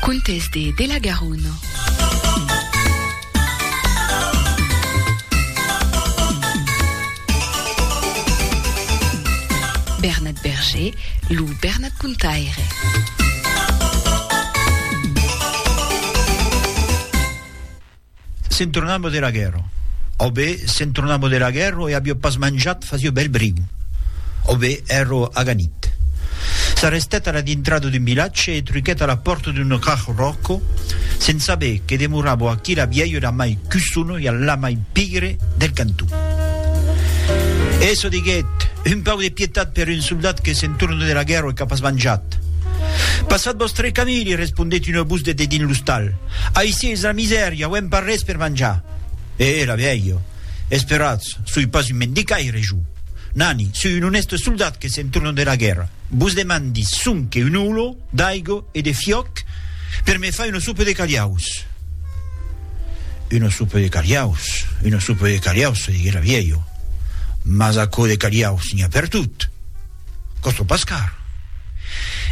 Contes de de la Garona. Bernat Berger, lo Bernat Contaire. Se'n tornava de la guèrra. Au be, se'n tornava de la guèrra e avió pas manjat fasió bèl briu. Au be, èra aganit. S'arrestèt a la dintrada d'un vilatge e truquèt a la pòrta d'un rach ròco, se'n saber que demorava aquí la vièlha la mai cussona e la mai pigre del canton. Essa diguèt, Un pauc de pietat per un soldat que se'n torna de la guèrra e qu'a pas manjat! Passat vòstre camí, li respondèt una votz de dedins l'ostal. Aicí es la misèria, auem pas res per manjar. E era vielha, Esperatz, soi pas un mendicaire, jo. Nani, soi un onèste soldat que se'n torna dera guèrra. Vos demandi sonque un holo d'aigo e de fiòc per me far una sopa de calhaus. Una sopa de calhaus, una sopa de calhaus, se diguec la vielha, mas aquò de calhaus n'i a pertot. Costo pas car.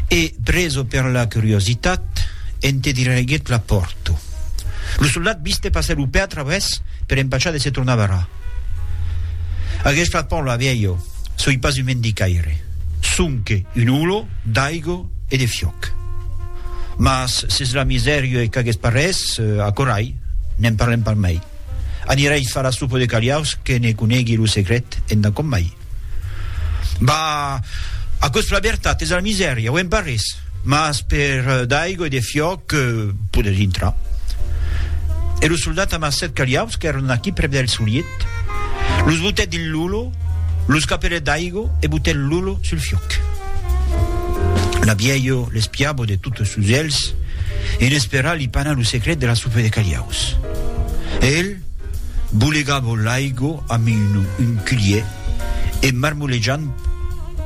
E, preso per la curiositat, ente diraiguèt la pòrta. Lo soldat viste passar lo pè a travès per empachar de se tornar barrar. Aguest flacon la vielha, soi pas un mendicaire, sonque un olor d'aiga e de fiòc. Mas s'es la misèria e qu'aguest parrés, acorai, ne'n parlem pas mai. Anirai far la sopa de caliaus que ne conegui lo secret enda com mai. Bah, aquò es la vertat, es la misèria, auem pas res, mas per d'aigua e de fiòc podes intrar. E lo soldat amb sèt calhaus qu'èron aquí prèp del soliet, los botèt dins l'olor, los capelèt d'aigua e botèt l'olor sul fiòc. La vièlha l'espiava de totes sos elhs, e n'esperava li panar lo secret de la sopa de calhaus. E el? Bolegavo l'aigo amb un culhier e marmolejant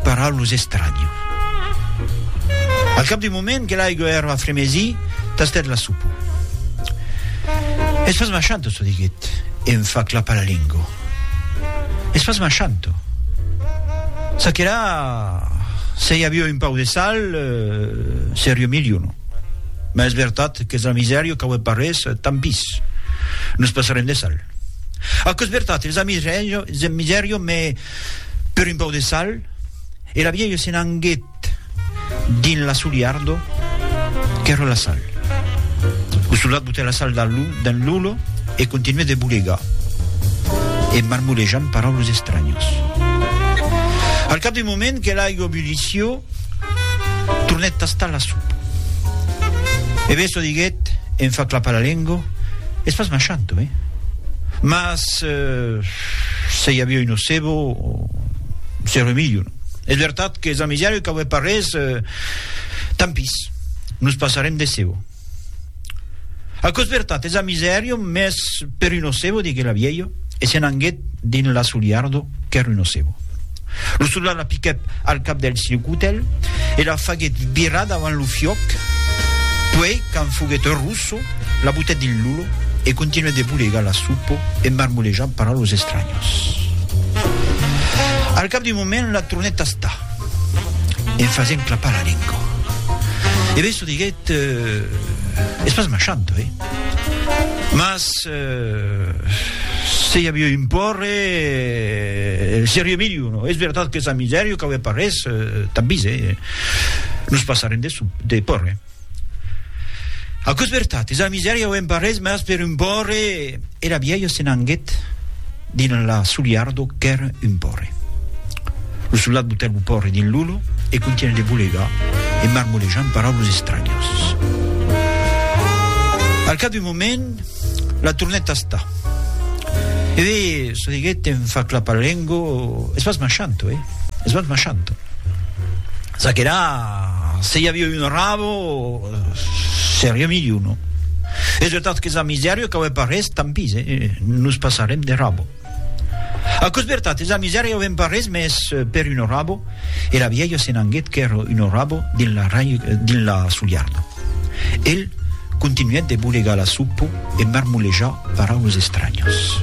para los estranhos. Al cap d'un moment que l'aigo èra a fremesi, tastèt la sopa. Es pas machanto, çò diguèt e em fa clapar la lengo. Es pas machanto. Ça que la, se i avió un pauc de sal, serió milhor, non? Mas es vertat qu'es la misèria qu'aué parés, tant pis. Nos passarem de sal. Aquò es vertat, es la misèria, es la misèria, mès per un pau de sal. E la vielha se n'anguèt dins la soliardo qu'èra la sal. Lo soldat botèt la sal dins l'ollo e continuèt de bolegar, e marmolejant paraules estranyas. Al cap d'un moment que l'aiga bullissió, Tornèt tastar la sopa. E Besso diguèt, en far clapar la lengo, Es pas machant, oi? Mas se i aviá un nocebo, seré milhor. Es vertat qu'es amisari qu'aué pas res, tant pis, nos passarem de cebo. Aquò's vertat, es a misèrio, mès per un ocebo, diguèt la vielha, e se n'anguèt dins l'asoliardo qu'èr un ocebo. Lo soldat la piquèt al cap del silcutel e la faguèt virar davant lo fiòc, puèi, quand foguèt rosso, la butèt dins l'ulo e continuèt de bolegar la supo e marmolejar para los estranyos. Al cap d'un moment, la tornèt tastar. en fasent clapar la lengua. E Besso diguèt, eh, es pas machanto, eh! Mas, eh, se i aviá un pòrre, eh, seriá milhor, no? Es vertat qu'es a misèria, qu'aué pas res, eh, tanbis, eh, nos passarem de, de pòrre. Aquò's vertat, es a misèria o emparrés, mas per un pòrre! Era vièlha se n'anguèt dins la soliardo qu'èr un pòrre. Lo soldat butèt lo pòrre dins l'olo e contunhèt de bolegar e marmolejar en paraules estranyas. Al cap d'un moment, la tornèt tastar. Eve, çò diguèt en fa clapar lengo, es pas machanto, eh? Es bèth machant. Ça que la, se i avia un rabo, seria milhor, non? Es vertat qu'es a misèria qu'a uèi pas res, tant pis, eh? Nos passarem de rabo. Aquò's vertat, es a misèria avèm pas res, mès per un rabo, e la vièlha se n'anguèt qu'èra un rabo dins la, dins la soliarda. El continuèt de bolegar la supo e marmolejar paraules estranhas.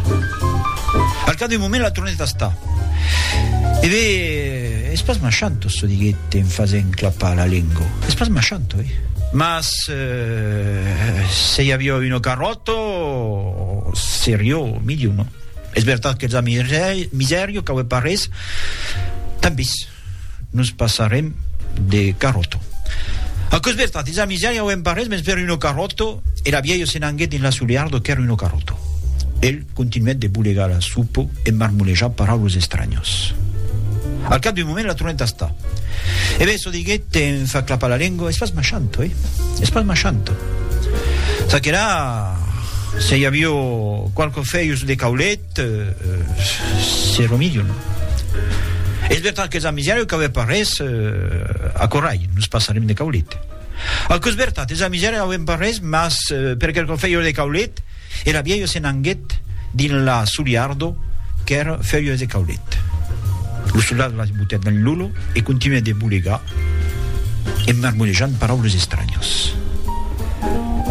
Al cap d'un moment la tornèt a estar. E be, es pas machant, Osso diguèt en fasent clapar la lengo. Es pas machant, oi? Mas se i aviá un ocarròto, serió milhor, non? Es vertat qu'els a miserio, cauè pas res, tant pis. Nos passarem de carròto. Aquò's vertat, dins la misèria auem pas res, mens per uno carròto, e la vielha se n'anguèt dins la soliardo qu'èra uno carròto. El continuèt de bolegar la supo e marmolejar paraulos estranyos. Al cap d'un moment la tornèt tastar. E ben, çò diguèt en far clapar la lengua, es pas machanto, eh? Es pas machanto. Ça que la, se i avio qualque fèius de caulet, Te se remedion. Es vertat qu'es amisèra qu'auè pas res a Corralh, nos passarem de caulet. Aquò es vertat, es amisèra auem pas res, mas per quelcò fèieu de caulet, era vielha se n'anguet dins la soliardo qu'èr fèieu de caulet. Lo soldat la botèt dins lo lo e continuèt de bolegar en marmolejant paraules estranhas.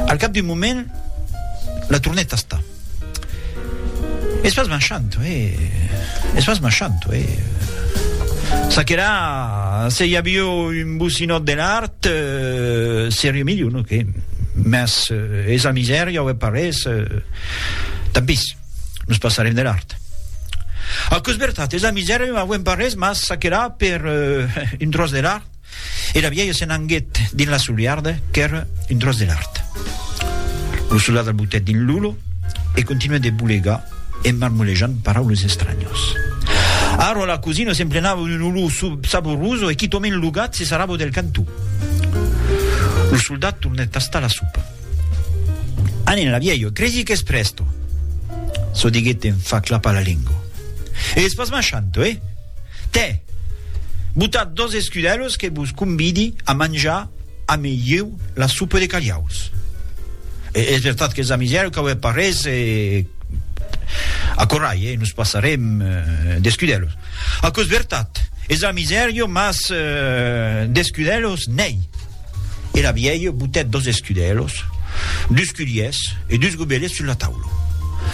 Al cap d'un moment, la tornèt tastar. Es pas marchant, ue. Es pas marchant, ue. Ça que là, se i avió un bocinòt de l'art, seriá milhor, non que? Mas es la misèria ue parés, tant pis, nos passarem de l'art. Aquò es vertat, es la misèria ue parés, mas ça que là, per un tròç de l'art, e la vièlha se n'anguèt dins la soliarda qu'èra un tròç de lard. Lo soldat al botèt dins l'olor e continuèt de bolegar en marmolejant paraules estranyas. Ara la cosina s'emplenava d'un olor saboroso e quitòment lo gat se sarrava del cantó. Lo soldat tornèt tastar la sopa. Anenla, vielho, cresi qu'es presto! çò diguèt en fa clapar la lengo. Es pas machanto, eh? Tè! Botat dos escudèlos que vos convidi a manjar ame ieu la sopa de calhaus. Es vertat qu'es amisièro qu'aué pas res e. Acorrai, eh? Nos passarem d'escudèlos. Aquò es vertat, es amisièro, mas d'escudèlos n'èi. Era vielh botèt dos escudelhos, dus culhiers e dus gobelets sus la taula.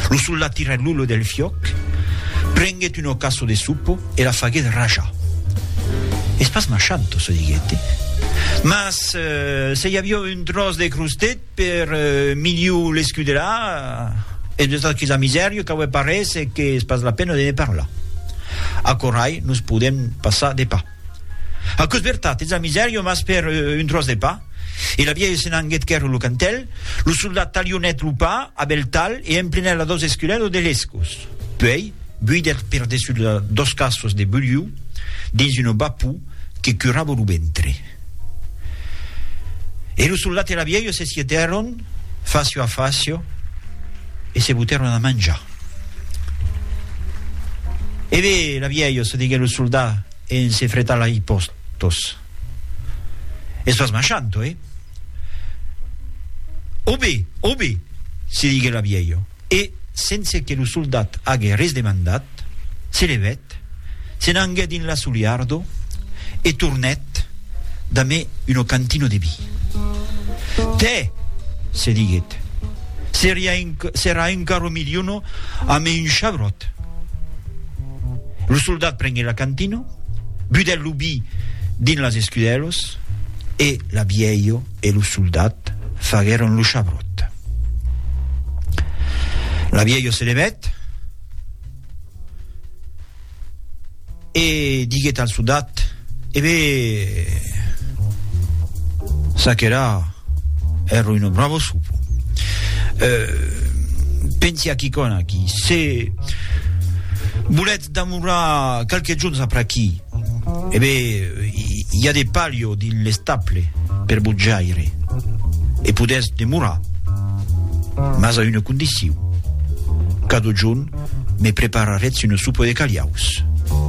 Lo soldat tirèt l'olho del fiòc, prenguèt un ocasso de sopo e la faguèt rajar. Es pas machant, tosó, diguèt, mas se i aviá un tròç de crostèt per miliu l'escudelar, es de tot quisa misèria qu'aué pas res e qu'es pas la pena de ne parlar. Aquò rai nos podèm passar de pas. Aquò's vertat, ets a misèria, mas per un tròç de pa. E la vièlha se n'anguèt quèrre lo cantèl, lo soldat talhonèt lo pa a bèl talh e emplenèt la dos esculelas de lescos. Puèi, buidèt per dessús la dos cassos de bulhiu dins una bapou que curava lo ventre. E lo soldat e la vièlha se sietèron. facio a facio e se butèron a manjar. E ve, la vièlhos, se diguèt lo soldat en se fretar la hipòst tos. Estòs marchant, oi? Obé, obé, se diguèt la vièlho, e, sense que lo soldat ague res demandat, Ret. Se levèt, se n'anguèt dins l'assoliardor e tornèt damé uno cantino de vi. Tè! se diguèt, serà encara o miliono amé un chabròt. Lo soldat prenguèt la cantino, budèt lo vi dins las escudèlos e la vièlho e lo soldat faguèron lo chabròt. La vièlho se levèt. E diguèt al sodat, E be, ça qu'èra ère un bravo sopo. E pensi a quicòna aquí, se volètz damorrar qualques jorns apr'aquí, E be, i a de palio dins l'estable per botjaire e podètz demorar, mas a una condicion, cadojun me preparatz una sopa de caliaus.